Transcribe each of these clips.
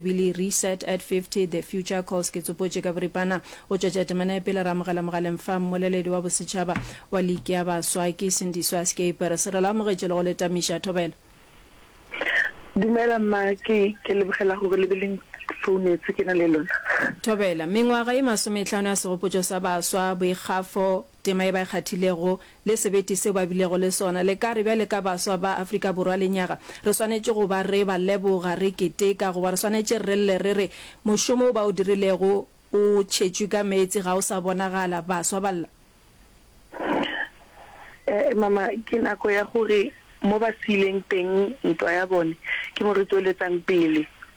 Billy Reset at 50, The Future Calls Ke tsopotše ka boripana go tšwetša temana ya pele, re amogela mogaleng fa mmoleledi wa bosetšhaba wa liki ya baswa ke Sindiswa Skeepers. Re lo amogetše le go le tamiša. Thobela. Dumela mma, ke, ke lebogela gore le be le nfounetse ke na le lona. Thobela. Mengwaga ye masometlhano ya segopotšo sa baswa, boikgafo, Tema ye ba e kgathilego le sebete seo ba bilego le sona, le ka re bjale ka baswa ba Afrika Borwa lenyaga, re swanetše go ba re ba leboga, re keteka, goba re swanetše re lle re re, Mošomo wo ba o dirilego o tšhetšwe ka meetse, ga o sa bonagala, baswa ba lla? Ee, mama, ke nako ya gore mo ba siileng teng ntwa ya bone, ke mo re tšweletsang pele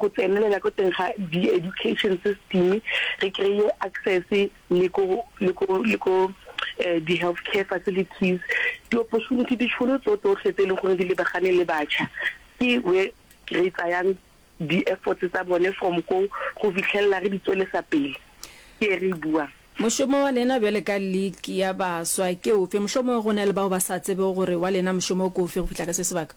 go tsenelela ko teng ga di education system, re kry-e access le ko le ko le ko di health care facilities, di opportunity, ditšhono tso tsotlhe tse e leng gore di lebagane le batšha ke where re tsayang di efforts tsa bone from ko go fitlhelela re di tswelesa pele ke e re e buang. Mošomo wa lena bjale ka league ya baswa ke ofe, mohlomongwe go na le bao ba sa tsebego gore wa lena mošomo ke ofe go fihla ka se sebaka?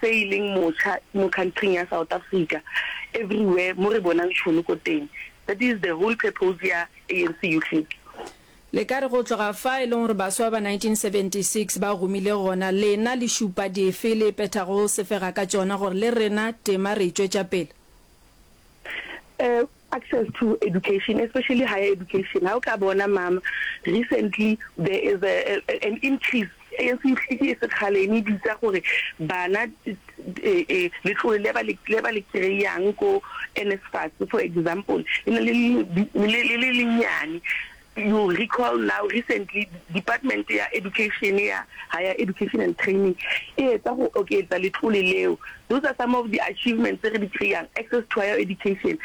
se e leng mocha mo countryng ya South Africa everywhere mo re bonang tšhono ko teng, that is the whole purpose ya ANC Youth League. Le ka re go tloga fa e leng gore baswa ba 1976 ba gomile gona, lena le šupa dife le phethago sefega ka tšona gore le rena tema re e tšwetša pele? access to education especially higher education ha o ka bona mama recently there is a, a, an increase e se ihlike e se khale e bitsa gore bana letlole le ba le ba le kreyang ko NSFAS for example e ne le le le le nyane You recall now recently Department ya Education ya Higher Education and Training e etsa go oketsa letlole leo. Those are some of the achievements tse re di kry-ang, access to higher education,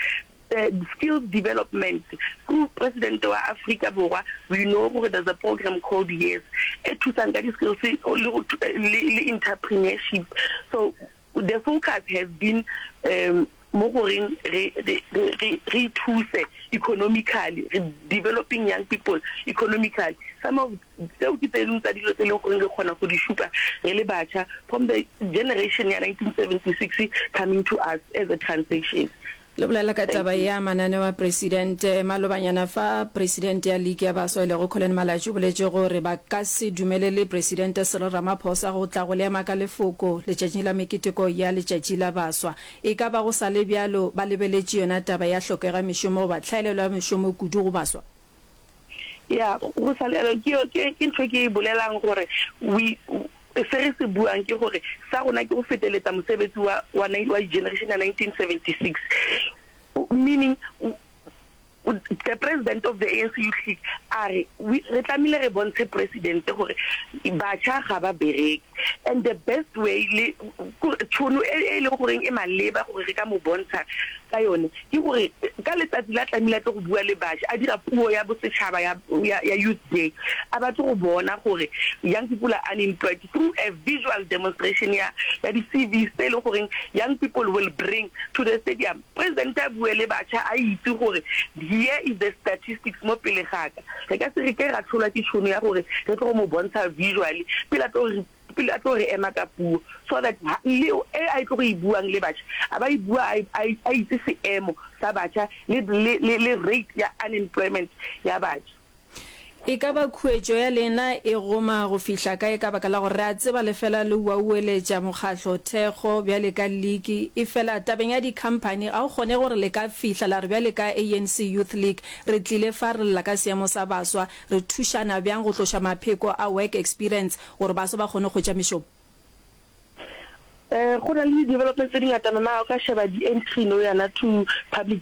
skills development. Through President wa Afrika Borwa we know gore there's a program called YES e thusang ka di-skills le le le entrepreneurship. So The focus has been um mo goreng re re re re ithuse economically, re developing young people economically. Some of tseo ke tse dingwe tsa dilo tse e leng goreng re kgona go di šupa re le batšha from the generation ya 1976 coming to us as a transition. Le bolela ka taba ya mananeo a Presidente. Malobanyana fa, Presidente ya Liki ya Baswa e lego Collen Malatji o boletše gore ba ka se dumelele Presidente Cyril Ramaphosa go tla go le ema ka lefoko letšatšing la meketeko ya letšatši la baswa. E ka ba go sa le bjalo ba lebeletše yona taba ya hlokega mešomo goba tlhaelelo ya mešomo kudu go baswa. Ya, go sa le yalo, ke, ke, ke ntho e ke e bolelang, gore we, se re se buang ke gore sa rona ke go feteletsa mosebetsi wa, wa, wa generation ya 1976, meaning the president of the ANC Youth League a re, we, re tlamehile re bontshe president gore batjha ga ba bereke. And the best way le tšhono e e leng goreng e maleba gore re ka mo bontsha ka yone ke gore ka letsatsi la tlamehile a tle go bua le baši a dira puo ya bosetšhaba ya ya youth day a batle go bona gore young people are unemployed through a visual demonstration ya ya di-cvs tse e leng goreng young people will bring to the stadium Presidente a bue le batšha a itse gore here is the statistics mo pele ga ka. Re ka se re ke ra hlolwa ke tšhono ya gore re tlo go mo bontsha visually pele a tlo re pele a tlo re ema ka puo so that le e a e tlo go e buang le batšha a ba e bua a a itse seemo sa batšha le le le rate ya unemployment ya batšha. E ka ba khuetšo ya lena e goma go fihla kae ka baka la gore re a tseba le fela le uaueletša mokgatlo, thekgo, bjale ka liki. Efela tabeng ya dikhamphani ga go kgonege gore le ka fihla la re bjale ka ANC Youth League re tlile fa re lla ka seemo sa baswa, re thušana bjang go tloša mapheko a work experience gore baswa ba kgone go hwetša mešomo. Go na le di-developments tse di ngatana, na o ka sheba di-entry no yana to public.